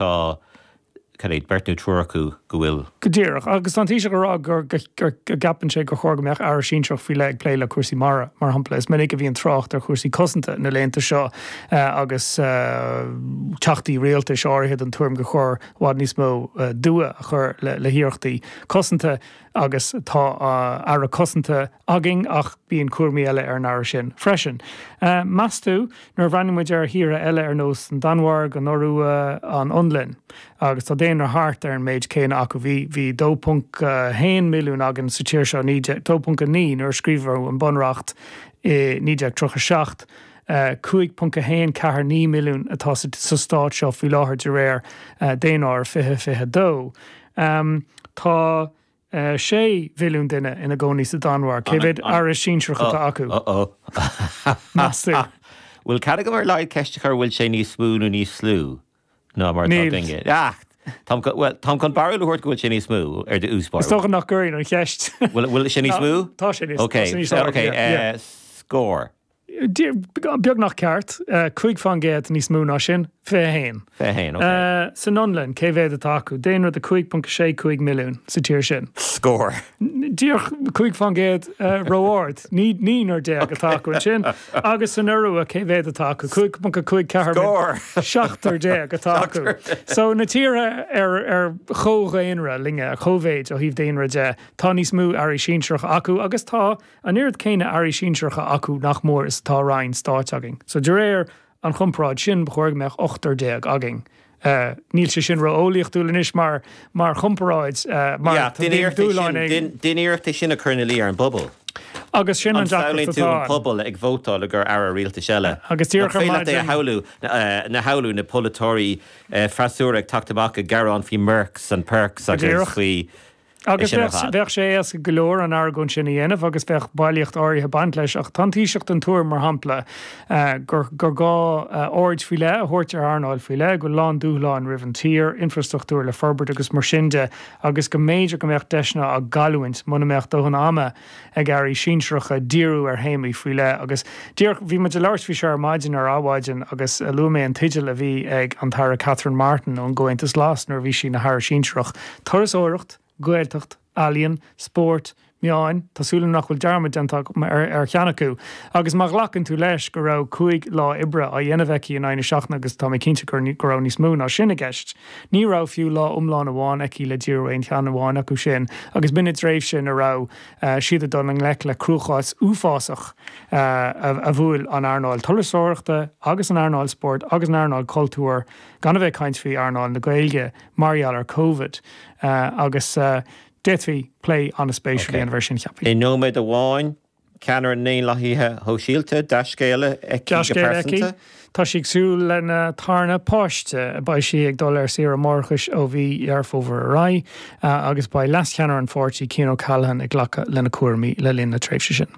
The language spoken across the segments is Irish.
tá, cad é, beirt nó triúr acu go bhfuil. Go díreach. Agus tá an Taoiseach ag rá go gceapann sé gur chóir go mbeadh Aire sinsearach faoi leith ag plé le cúrsaí mara, mar shampla. Is minic a bhíonn trácht ar chúrsaí cosanta na laethanta seo agus teachtaí rialtais áirithe den tuairim gur chóir i bhfad níos mó dua a chur le hiarrachtaí cosanta. agus tá Aire Cosanta againn ach bíonn cúraimí eile ar an Aire sin freisin. Meas tú, nuair a bhreathnaíonn muid ar thíortha eile ar nós an Danmhairg, an Iorua, an Fhionlainn, agus tá daonra thart ar an méid céanna acu, bhí 2.1 milliún againn sa tír seo, 2.9 nuair a scríobhadh an Bunreacht i 1937, 5.149 milliún atá sa Stát seo faoi láthair de réir daonáirimh 2022, Tá 6 mhilliún duine ina gcónaí sa Danmhairg. Cé mhéad aire sinsearach atá acu? Meastú. Bhfuil cead agam ar laghad ceist a chur, bhfuil sé níos mó nó níos lú ná mar atá againne? Níl. Bhuel, táim chun barúil a thabhairt go bhfuil sé níos mó, ar diabhal spóirt. Is dócha nach gcuirfinn an cheist. Bhfuil sé níos mó? Tá sé níos lú. Ok, scór. beagnach ceart, cúig faoin gcéad níos mó ná sin, fiche haon. Fiche haon, ok. San Fhionlainn, cé mhéad atá acu? Daonra de 5.65 milliún sa tír sin. Scór. Díreach cúig faoin gcéad ró-ard, naonúr déag atá acu ansin. Agus san Iorua, cé mhéad atá acu? 5.54 milliún. Scór. Seachtar déag atá acu. So, na tíortha ar chomh-dhaonra linne, ar chomh-mhéid ó thaobh daonra de, tá níos mó airí sinsearacha acu agus tá, An oiread céanna airí sinsearacha acu, nach mór, is atá ranna stáit againn. So, de réir an chomparáid sin, ba chóir go mbeadh ochtar déag againn. Níl sé sin ró-eolaíochtúil anois mar chomparáid, mar tá daoine dúshláin ag. Déan iarracht é sin a chur ina luí ar an bpobal. Agus sin an deacracht atá ann. An samhlaíonn tú an pobal ag vótáil le gcomhair aire rialtais eile? Agus díreach ar maidin. Féach é a shamhlú, ná samhlú, na polaiteoirí freasúra ag teacht amach ag gearán faoi Mercs and Perks agus faoi. Agus bheadh sé éasca go leor an argóint sin a dhéanamh agus bheadh bailíocht áirithe baint leis, ach tá an Taoiseach den tuairim, mar shampla, eh, gur gá eh, aird faoi leith a thabhairt ar earnáil faoi leith, go bhfuil a lán dúshlán roimh an tír, infrastruchtúr le forbairt agus mar sin de, agus go mb'fhéidir go mbeadh deiseanna á gcailliúint muna mbeadh dóthain ama ag airí sinsearacha díriú ar théamaí faoi leith agus díreach, bhí muid ag labhairt faoi seo ar maidin, ar Adhmhaidin, agus luaigh mé an teideal a bhí ag an Aire Catherine Martin ón gComhaontas Glas nuair a bhí sí ina hAire sinsearach, Turasóireacht, Gaeltacht, Ealaíon, Spórt, Meáin, tá súil agam nach bhfuil dearmad déanta agam ar cheann acu, agus má ghlacann tú leis go raibh cúig lá oibre á dhéanamh aici in aghaidh na seachtaine agus tá mé cinnte go raibh níos mó ná sin i gceist. Ní raibh fiú lá iomlán amháin aici le díriú ar aon cheann amháin acu sin agus b'in i dtréimhse ina raibh siad ag dul i ngleic le cruachás uafásach a bhuail an earnáil turasóireachta agus an earnáil spóirt agus an earnáil cultúir, gan a bheith ag caint faoi earnáil na Gaeilge, mar gheall ar Covid. Agus d'fhéadfaí plé an-spéisiúil a dhéanamh air sin, cheapfainn. I nóiméad amháin, Ceannaire na nDaonlathaithe Sóisialta, dea-scéal aici go pearsanta. Tá sí ag súil lena tarna páiste. Beidh sí ag dul ar saoire máithreachais ó mhí Dheireadh Fómhair ar aghaidh agus beidh leascheannaire an pháirtí, Cian O'Callaghan, ag glacadh lena cúraimí le linn na tréimhse sin.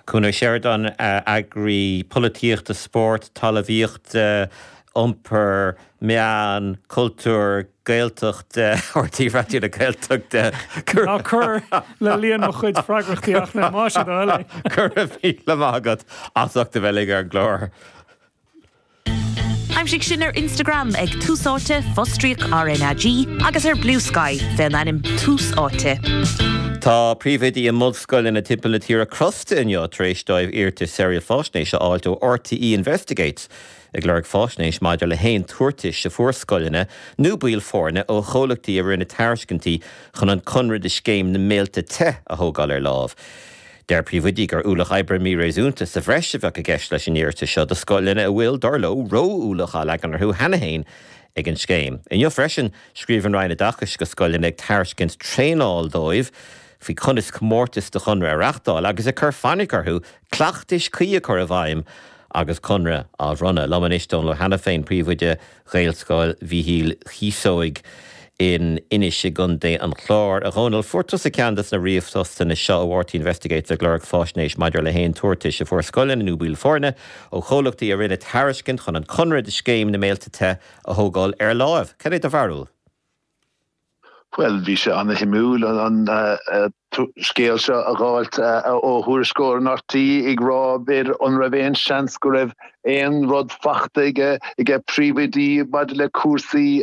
Conor Sheridan, eagarthóir polaitíochta, spóirt, talmhaíochta, iompair, meán, cultúir. Gaeltacht, RTÉ Raidió na Gaeltachta, Cuir. Ná cuir le líon mo chuid freagrachtaí ach le maise do thoil é. Go raibh míle maith agat as ucht a bheith linn ar an gclár. Aimsigh sinn ar Instagram ag Tús Áite, fostríoc RnaG, agus ar Bluesky faoin ainm Tús Áite. Tá príomhoidí i mbunscoileanna timpeall na tíre crosta inniu tar éis dóibh iarratais saoráil faisnéise a fháilt ó RTÉ Investigates. ag lorg faisnéis maidir le haon tabhartais a fuair scoileanna nó baill foirne ó chomhlachtaí a rinne tairiscintí chun an conradh do Scéim na mBéilte Te a thógáil ar láimh. Deir príomhoidí gur ualach oibre míréasúnta sa bhreis a bheadh i gceist leis an iarratas seo do scoileanna a bhfuil, dar leo, ró-ualach á leagan orthu cheana féin ag an scéim. Inniu freisin, scríobh an Roinn Oideachais chuig scoileanna ag tairiscint traenáil dóibh faoi conas comórtas do chonradh a reáchtáil agus ag cur fainic orthu cleachtais cuí a chur i bhfeidhm agus conradh á bhronnadh. Liom anois Dónal Ó hAiniféin, príomhoide Ghaelscoil Mhíchíl Chíosóig in Inis i gContae an Chláir. A Dhónaill, fuair tusa ceann des na ríomhphostanna seo ó RTÉ Investigates ag lorg faisnéis maidir le haon tabhartais a fuair scoileanna nó baill foirne ó chomhlachtaí a rinne tairiscint chun an conradh do Scéim na mBéilte Te a thógáil ar láimh. Cén é do bharúil? Bhuel, bhí sé ana-shuimiúil an scéal seo a dh'fháilt ó thuairisceoir in RTÉ ag rá b'fhéidir an raibh aon seans go raibh aon rud fachta aige, aige príomhoidí maidir le cúrsaí